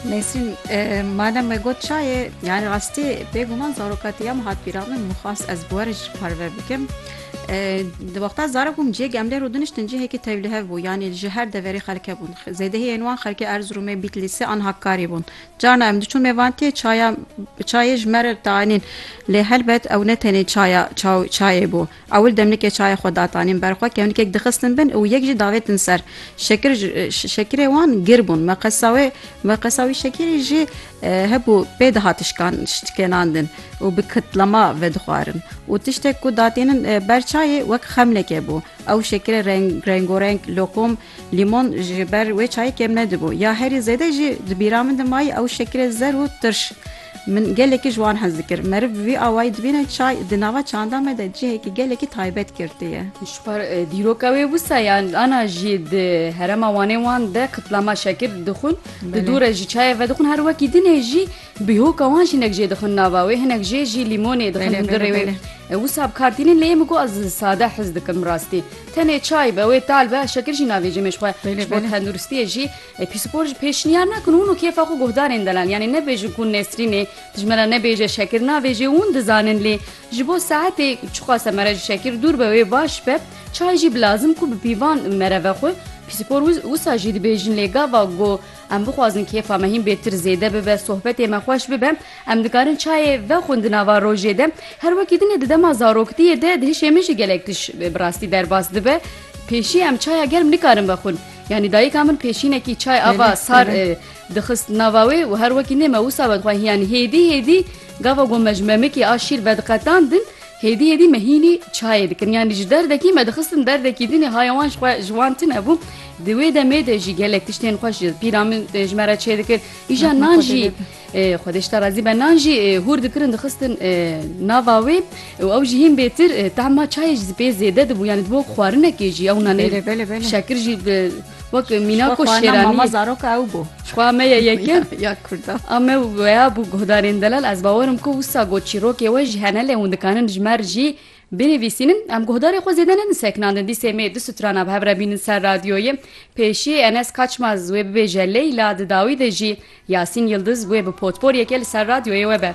Nesrîn madem me got çayê yani rastî bêguman zaroka te ya min hat pîra min min xwast ez bi we re jî parve bikim di wexta zarok bûm cihê gemlê rû diniştin cihêkî tevlihev bû yanî ji her deverê xelke bûn zêdehî yên wan xelkê Erzurûmê Bîtlîsê an Hakkari bûn carna em diçûn mêvantiyê çaya çayê ji me re dianîn lê helbet ew ne tenê çaya çayê bû Ewil demnikê çayê xwe datanîn ber xwe, kevnikek dixistin bin û yek jî davêtin ser. Şekir ji şekirê wan gir bûn. Me qesa wê me qesa wî şekirî jî hebû pê dihat şikan şikênandin û bi kitlema vedixwarin û tiştek ku datînin ber çayê wek xemneke bû. Ew şekirê reng rengo reng loqom Lîmon ji ber wê çayê kêm nedibû. Ya herî zêde jî di bîra min de mayî ew şekirê zer û tirş. Min gelekî ji wan hez dikir. Meriv bi vî awayî dibîne çay di nava çanda me de cihekî gelekî taybet girtiye. Ji ber dîroka wê wisa yan ana jî di herêma Wanê wan de qitlama şekir dixwin. Di dû re jî çayê vedixwin. Her wekî dinê jî Bîhoka wan jinek jê dixwin nava wê hinek jê jî lîmonê dixwin Bele, hundirê bele, wê. bele. Wisa bi kar tînin lê min got ez sade hez dikim bi rastî. Tenê çay be wê tal be şekir jî navêjim ê ji xwe. Bele, Ji bo bele. tenduristiyê jî e, pîspor ji pêşniyar nakin û hûn û kêfa xwe guhdarên delal yanê nebêjin ku Nesrînê ji me re nebêje şekir navêjê hûn dizanin lê ji bo saetê çiqase mere ji şekir dûr be wê baş be çay jî bi lazim ku bi pîvan mere ve xwe pîspor wisa jî dibêjin lê gava ku Em bixwazin kêfa me hîn bêtir zêde bibe, sohbetê me xweş bibe, em dikarin çayê vexwin di nava rojê de. Her wekî din e di dema zaroktiyê de di hişê min jî gelek tişt bi rastî derbas dibe. Pêşî em çaya germ nikarin vexwin. Yanî dayika min pêşînekî çay ava sar dixist nava wê û her wekî nê me wisa vedixwe hiyanî hêdî hêdî gava gomej memikê a şîr vediqetandin Hêdî hêdî me hînî çayê dikin yanî ji derdekî me dixistin derdekî din ê haya wan ji xwe ji wan tune bû. Di wê demê de jî gelek tiştên xweş ji pîra min ji me re çêdikir. Îja nan jî Xwedê ji te razî be nan jî hûr dikirin dixistin nava wê û ew jî hîn bêtir tehma çayê jî pê zêde dibû yanî di bo xwarinekê jî ew nanê şekir jî Wek mîna ku şêranî mama zarok ew bû. Xwa me ye yekin ya Kurda. A me weya bû guhdarên delal ez bawerim ku wisa got çîrokê we ji hene lê hûn dikanin ji me jî binivîsînin em guhdarê xwe zêde ne diseknandin dîsê mê du strana bi hev re bînin ser radyoyê pêşî enes kaçmaz wê bibêje leyla di dawî de jî yasîn yildiz wê bi potpor yeke li ser radyoyê we be.